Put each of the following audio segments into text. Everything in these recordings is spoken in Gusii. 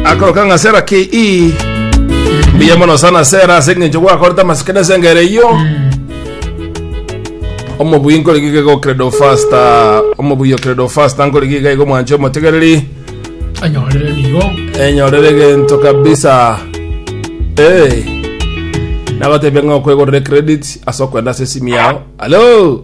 akoroka ng'a sera ki i mbuya mono sana sera ase eng'encho gwakorete amasike na esengere iyo omobuyi nkore giga igo credo fasta omobuyi o credo fasta nkore giga igo mwanche omotegereri anyorere nigo enyorere gento kabisa hey. nagotebia ng'a okwegorere credit ase okwenda ase esimi yao alo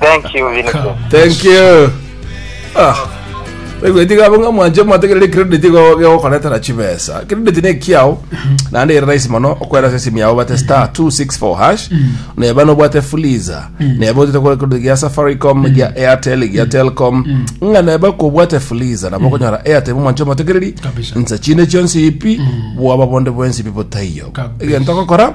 Thank you, Vincent. thank you ah baigweti gabo ng'a mwanche mwategerere credit go- gegokoretera chibesa credit ne ekiao naende ere rahisi mono okwera ase esimu yao bate star 264 hash neba nobwate fuliza neba otete kore credit gia safaricom gia airtel gia telcom ng'a neba kobwate fuliza nabo okonyora airtel mwanche mwategereri Kabisa. nsa chinde chionsi ipi bwaba bonde bwensi ipi botaiyo Kabisa. egento ogokora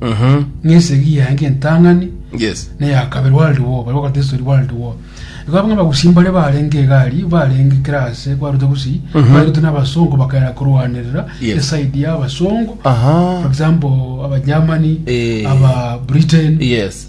Mhm. ng'a esegi yaye ng'entang'ani Yes. na eya kabere World War, baria bagoteba estori World War. Igo abwo abagusi mbare barenge egari, barenge kera ase kwarute gusii, Mhm. barute n'abasongo bakaera korwanerera Yes. eside ya abasongo, Aha. for example, aba Germany, Eh. aba Britain, Yes.